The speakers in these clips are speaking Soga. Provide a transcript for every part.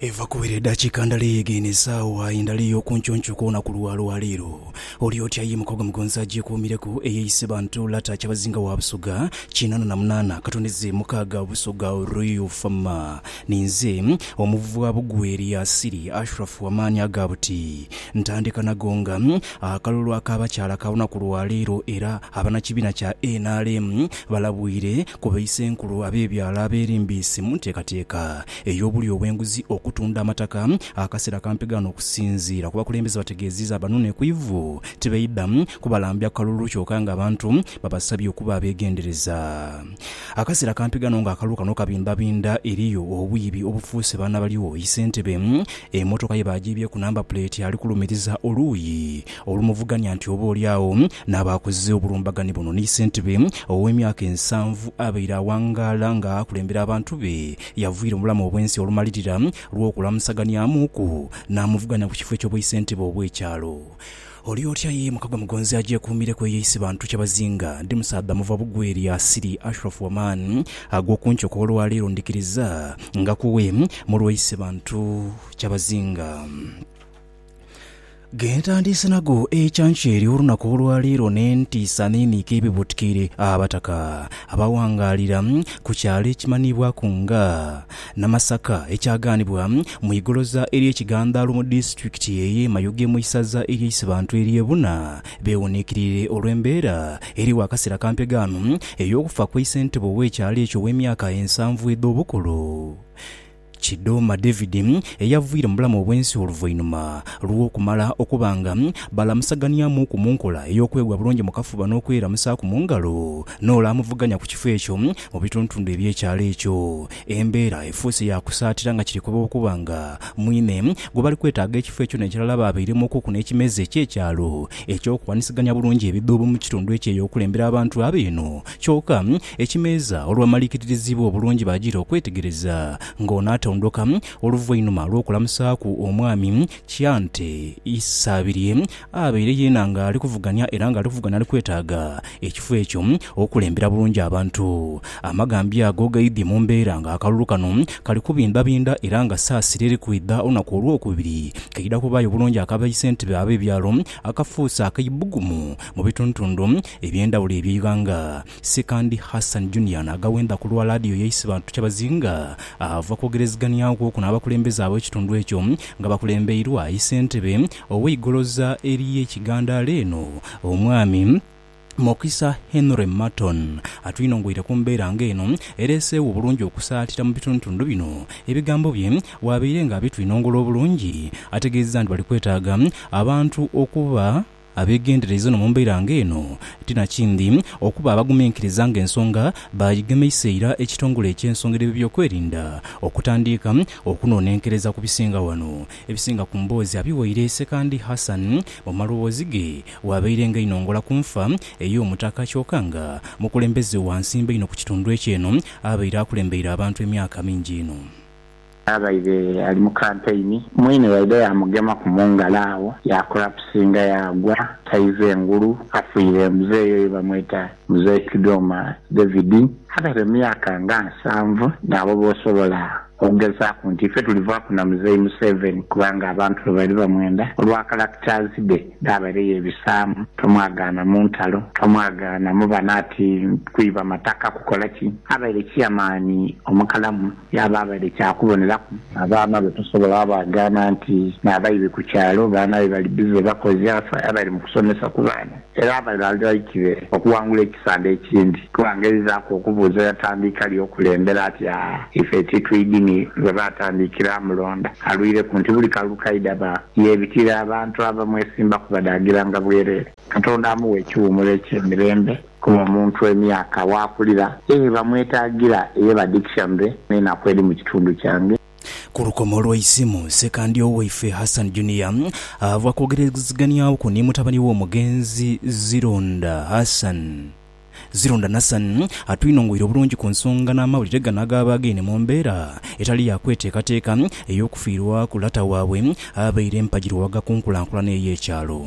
Eva kubera edhakiika ndala eyeghe eno esaawa aye ndala ey'okuncuuncu kwona ku lwa lwaleero. Oli oti aye mukago mugonzi agyekuumireku eyeeyise bantu lata kyabazinga wa Busoga kinaana na munaana katondeze mukaaga Busoga Royal Fama. Ninze omuvwa Bugweri Yasiri Ashrafu amaani aga buti ntandika nago nga akalulu ak'abakyala ka lunaku lwa leero era abanakibiina kya nrm balabwire ku baisenkulu ab'ebyalo abeerimbiise mu nteekateeka ey'obulyo obw'enguzi okutunda amataka akasera kampi gano okusinziira ku bakulembeze bategeziiza abanune ku ivu tibaidha kubalambya kalulu kyoka nga abantu babasabye okuba abegendereza akasera kampi gano nga akalulu kano kabimbabinda eriyo obwiibi obufuuse baana baligho isentebe emotoka ye bagyibyeku namba puleeti alikulumiriza oluuyi Olumuvuganya nti oba oli agho n'aba akoze obulumbagani buno ni ssentebe ow'emyaka ensanvu abaire awangaala nga akulembera abantu be yavuyira mu bulamu obw'ensi olumalirira lw'okulamusaganiamuuku n'amuvuganya ku kifo eky'obwaisentebe obw'ekyalo. Oli otya ye Mukagwa Mugonzi agyekuumireku eyo isi bantu kyebazinga. Ndi musaadha muva bugwe erya Asili Ashraf Waman agw'okunkyoka olwaleero ndhikiriza nga kuwe mulwa isi bantu kyabazinga. Gentandiise nago ekyankyeri olunaku olwaleero n'entiisa n'eniika ebibuutikire Abataka abawangaalira ku kyalo ekimanhiibwaku nga Namasaka ekyagaanibwa mu igoloza ery'ekigandaalo mu disitulikiti ey'e Mayuge mu isaza ery'e Isibantu ery'e Buna beewuniikirire olw'embeera eriwo akaseera kampegaano ey'okufa kw'eisentebe ow'ekyalo ekyo ow'emyaka ensanvu edh'obukulu Kidhoma Davidi ey'aviire mu bulamu obw'ensi oluvainhuma lw'okumala okuba nga balamusaganiamuuku mu nkola ey'okwegwa bulungi mu kafuba n'okweramusaaku mu ngalo n'ole amuvuganya ku kifo ekyo mu bitundutundu eby'ekyalo ekyo embeera efuuse ya kusaatira nga kiri kuba okuba nga mwine gwe bali kwetaaga ekifo ekyo n'ekirala baabeiremuukuku n'ekimeeza eky'ekyalo eky'okuwanisiganya bulungi ebidhuubo mu kitundu ekyo ey'okulembera abantu abo eno kyoka Ekimeeza olwamaliikiririzibwa obulungi baagira okwetegereza ng'ono atondoka oluvainuma lw'okulamusaaku omwami Kyante Isabirye abaire yeena ng'ali kuvuganya era ng'ali kuvuganya ali kwetaaga ekifo ekyo okukulembera bulungi abantu. Amagambi ago gaidhie mu mbeera ng'akalulu kano kali kubindhabindha era nga saasira eri kwidha olunaku olwokubiri kaidha kubaayo bulungi aka baisentebe ab'ebyalo akafuuse ak'eibugumu mu bitundutundu eby'endhawulo eby'eighanga. Sikandi Hassan Junior n'agawenda ku lwa laadiyo ya Isibantu Kyabazinga ava kwogerezegania okwo n'abakulembeze ab'ekitundu ekyo nga bakulembeirwa Isentebe ow'eigoloza ery'e Kigandaala eno, Omwami Mokisa Henry Marton atwinongoire ku mbeera nga eno ereeseewo obulungi okusaatira mu bitundutundu bino. Ebigambo bye bwabaire nga abitwinongola obulungi ategeezezza nti bali kwetaaga abantu okuba Abeegendereiza no mu mbeera nga eno, ti na kindi okuba abaguminkiriza nga ensonga baagigemeisa ira ekitongole eky'ensonga edh'ebyokwerinda okutandiika okunoonenkereza ku bisinga wano. Ebisinga ku mboozi abiwaire Sekandi Hassan mu maloboozi ge waabaire nga inho ngola ku nfa ey'omutaka kyoka nga mukulembeze wa nsimbe inho ku kitundu ekyo eno abaire akulembeire abantu emyaka mingi inho. Yabaire ali mu kampeyini, mwine yaidha yaamugemaku mu ngalo agho yaakulapusinga yaagwa taiva engulu afiire. Muzei oyo bamweta Muzei Kidwoma David. Abaire mu myaka nga nsanvu. Naabo b'osobola okugezaaku nti ife tulivaaku na Muzei Museveni kubanga abantu be baali bamwenda olwa characters dhe dh'abaire yeebisaamu. Tomwagaana mu ntalo, tomwagaana mu bano ati kwiba mataka kukola ki. Abaire chairman omukalamu. Yaaba abaire kya kuboneraku. Abaana be tosobola abaagaana nti n'abaibi ku kyalo baana be bali bize bakoze afe abaire mu kusomesa ku baana era abaire ali right be okuwangula ekisande ekindi kuba ng'erizaaku okubuuza yatandiika li okulembera ati aa ife titwidini gwe baatandiikira amulonda alwireku nti buli kalulu kaidha ba yeebitira abantu abamwesimbaku badaagiranga bwereere. Katonda amuwe ekiwuumuro eky'emirembe. Kuba omuntu emyaka w'akulira eye bamwetaagira eye badhikisha mbe n'enaku edhi mu kitundu kyange. Ku lukomo lw'eisimu, Ssekandya waife Hassan Junior ava kwogerezeghanyaku ni mutabani we omugenzi Zironda Hassan. Zironda Nassan atwinongoire obulungi ku nsonga n'amawulire gano agaaba againe mu mbeera etali ya kweteekateeka ey'okufiirwaku lata waabwe abaire mpagirwa wagakunkulankulana ey'ekyalo.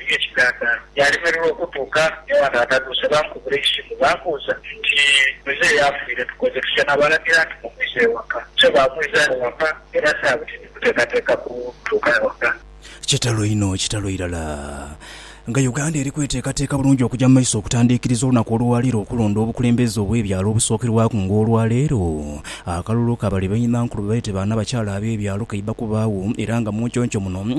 Eby'ekiganda byalemererwa okutuuka ewa taata Duse. Baamukubira eisimu baamubuuza nti, Muzeeyi afiire, tukoze tutya? Naabalagira nti, Mumwise ewaka. So baamwisa ewaka era saabiti ndi kuteekateeka kutuuka ewaka. Kitalo inho, kitalo irala nga Uganda eri kweteekateeka bulungi okuja mu maiso okutandiikiriza olunaku olwaleero okulonda obukulembeze obw'ebyalo obusookerwaku nga olwaleero akalulu ka bali bainhankulu beete baanabakyala ab'ebyalo kaiba kubaagho era nga munconco muno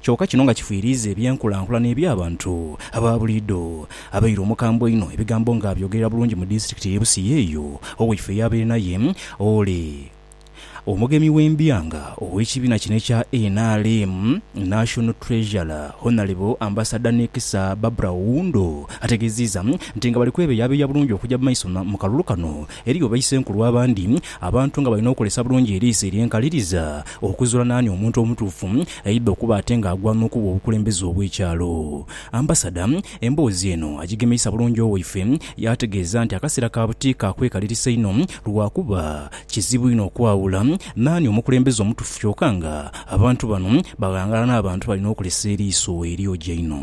kyoka kino nga kifiiriiza eby'enkulankulana eby'abantu aba buliidho. Abaire omukambwe einho ebigambo nga abyogerera bulungi mu disitulikiti ey'e Busia eyo, Owaife eyaabaire naye ole omugemi w'embyanga ow'ekibiina kino ekya nrm, National Treasurer Honalebo Ambasada Nekisa Barbra Oundo ategeziiza nti nga bali kwebeyabeeya bulungi okuja mu maiso mu kalulu kano Eriyo baisenkulu abandi abantu nga balina okozesa bulungi eriiso ery'enkaliriza okuzuula naani omuntu omutuufu aidha okuba ate nga agwana okuba obukulembeze obw'ekyalo. Ambasada emboozi eno agigemeisa bulungi owaife yaategeeza nti akaseera ka buti ka kwekalirisa inho lwakuba kizibu inho okwawula naani omukulembeze omutuufu kyoka nga abantu bano baghangala n'abantu balina okozesa eriiso eryogi einho.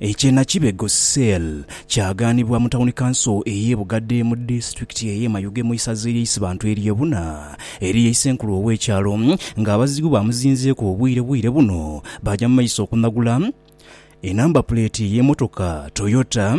Eky'e Nakibego cell kyagaanibwa mu Tawuni Kanso ey'e Bugadde mu Disitulikiti ey'e Mayuge mu Isaza ery'e Isibantu ery'e Buna eriyo Isenkulu ow'ekyalo ng'abazigu bamuzinzeeku obwire bwire buno baja mu maiso okunagula e namba puleeti y'emotoka Toyota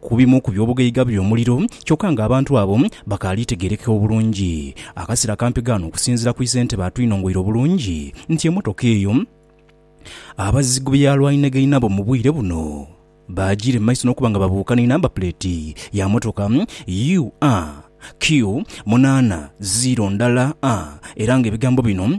ku bimu ku by'obugaiga by'omuliro, kyokka ng'abantu abo bakaali tegeerekeka obulungi. Akasera kampi ghano okusinziira ku isentebe atwinongoire obulungi nti emotoka eyo abazigu bye yaalwaniraga inabo mu bwire buno baajiira mu maiso n'okuba nga babuuka ni namba puleeti ya motoka UAQ munaana ziiro ndala a era ng'ebigambo bino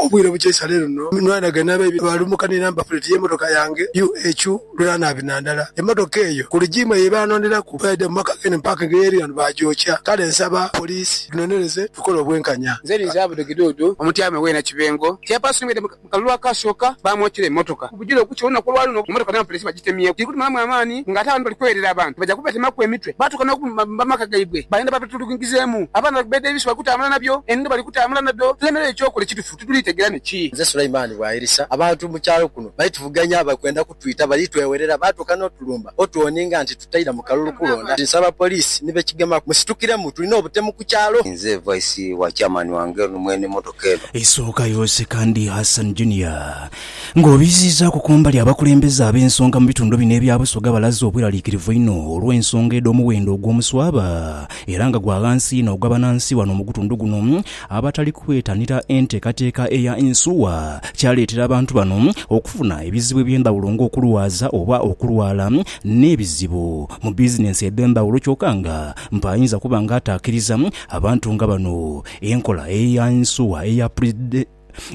Obwire bukya isale luno nwanhaga n'abaibi baalumuka ni namba puleti y'emotoka yange UH lw'eranaabi na ndala. Emotoka eyo ku lijiimu eyo ebaanonderaku bweyaidha mu maka g'eno ni paakingi ey'eri ghano baagyokya. Kale nsaba poliisi tunonereze tukole obwenkanya. Nze ninze Abdu Kiduudu, omutyame w'e Nakibengo. Chairperson waidha mu kalulu akaasooka baamwokyera emotoka. Kujira okukya olunaku olwa luno emotoka n'amapoliisi bagitemyeku dhiri kutumalamu amaani nga ate abandi bali kweerera abantu baja kubatemaku emitwe baatuuka n'okubbamba amaka gaibwe bayenda babatuluguingizeemu. Abaana bali ku beedi ebisu bali kutambula nabyo, enono bali kutambula nadho tulemereyo eky'okola ekitufu titulitegera ni ki. Nze Sulaiman Bwairisa, Abantu mu kyalo kuno bali tuvuganya bali kwenda kutwita bali twewerera baatuuka n'otulumba otwoninga nti tutaidha mu kalulu kulonda nti nsaba poliisi ni bekigemaku musitukiremu tulina obutemu ku kyalo. Nze Vice wa Chairman wange ono mwene motoka eno. Isooka yose kandi Hassan Junior Ng'obiziizaaku ku mbali, abakulembeze ab'ensonga mu bitundu bino ebya Busoga balaze obweraliikirivu einho olw'ensonga edh'omuwendo ogw'omuswaba era nga gwa ghansi inho ogw'abanansi ghano mu gutundu guno abatali kwetanira enteekateeka eya Insuwa kyaleetera abantu bano okufuna ebizibu eby'endhawulo ng'okulwaza oba okulwala n'ebizibu mu bizinensi edh'endhawulo kyoka nga mpa ayinza kuba nga ataakiriza abantu nga bano enkola eya Insuwa eya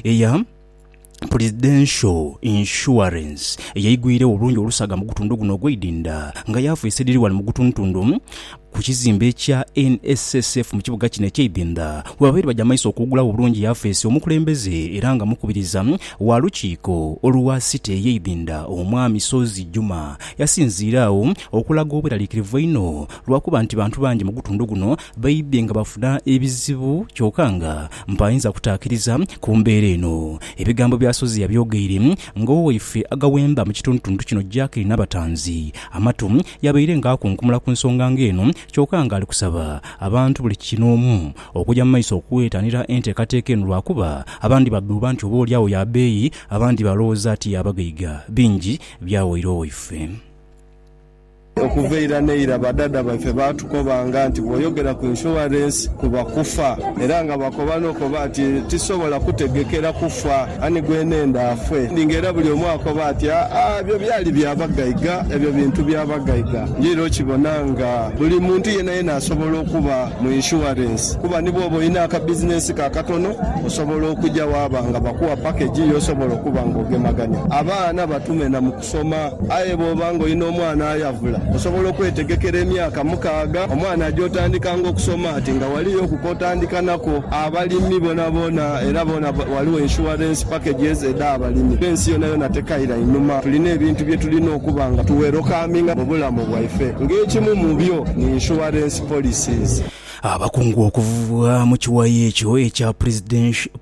eya Presidential Insurance eyaigwiiregho obulungi olusaga mu gutundu guno ogw'eidinda nga yaafuusa edhiri ghano mu gutundutundu ku kizimbe ekya NSSF mu kibuga kino eky'eidinda webabaire baja maiso okuwugulagho obulungi yafeesi omukulembeze era nga mukubiriza wa lukiiko olwa City ey'eidinda Omwami Ssozi Juma yasinziire agho okulaga obweraliikirivu einho lwakuba nti bantu bangi mu gutundu guno Baidhe nga bafuna ebizibu kyoka nga mpainza kutaakiriza ku mbeera eno. Ebigambo bya Sozi yabyogeire ng'owaife agaghemba mu kitundutundu kino Jack Nabatanzi amatu, yabaire nga akunkumula ku nsonga ng'eno kyoka nga ali kusaba abantu buli kinoomu okuja mu maiso okwetanira enteekateeka eno lwakuba abandi badhuuba nti oba olyagho ya beeyi abandi baalowooza ti ya bagaiga bingi byawaire owaife. Okuva eira n'eira badhaadha baife baatukobanga nti bw'oyogera ku inshuwarensi kuba kufa. Era nga bakoba n'okoba nti, Tisobola kutegekera kufa, ani gwenenda afe? Nga era buli omu akoba ati, Aa, ebyo byali bya bagaiga, ebyo bintu bya bagaiga. Nje era okibona nga buli muntu yenayena asobola okuba mu inshuwarensi. Kuba ni bw'oba olina akabizinensi ko akatono, osobola okuja waaba nga bakuwa pakegi y'osobola okuba nga ogemagania. Abaana batume na mu. okusoma. Aye bw'oba ng'olina omwana ayavula, osobola okwetegekera emyaka mukaaga omwana gy'otandikanga okusoma ati nga ghaliyo oku k'otandika nakwo. Abalimi boonaboona era boona ghaligho insurance packages edh'abalimi. Fence yonayona tekaira inhuma. Tulina ebintu bye tulina okuba nga tu welokaminga mu bulamu bwaife. Ng'ekimu mu byo ni insurance policies. Abakungu okuva mu kiwayi ekyo ekya Presidential.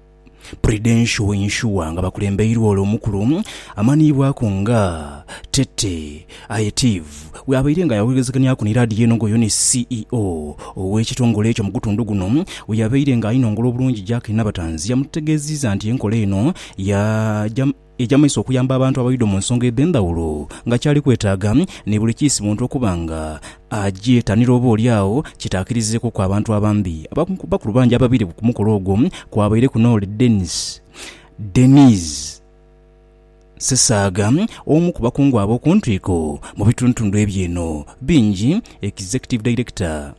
Prudential Insure nga bakulembeirwa ole omukulu amanhiibwaku nga Tete Ayetiv bw'abaire nga yawewegezeganyaku ni laadiyo eno ng'oyo ni CEO ow'ekitongole ekyo mu gutundu guno bwe yabaire nga ainongola obulungi Jack Nabatanzi yamutegeeziiza nti enkola eno ya Eija mu maiso okuyamba abantu abaidho mu nsonga edh'endhawulo nga kyali kwetaaga ni buli kiisi muntu okuba nga agyetanira oba oli agho kitaakirizeekuku abantu abambi. Abakulu bangi ababaire ku mukolo ogwo kwabaireku n'oli Denis Denise Ssesaaga omu ku bakungu ab'oku ntwiko mu bitundutundu ebyo eno. Bingi, Executive Director.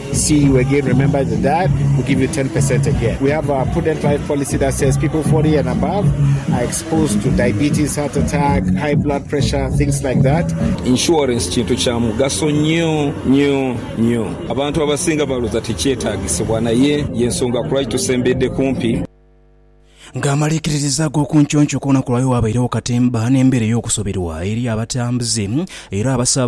Insurance kintu kya mugaso nyo nyo nyo. Abantu abasinga baloza tikyetagisibwa naye yensonga kulwaki tusembedde kumpi. Nga amaliikiririza ag'okunconco ku lunaku lwaleero wabairegho katemba n'embeera ey'okusuubirwa eri abatambuze era abasaba.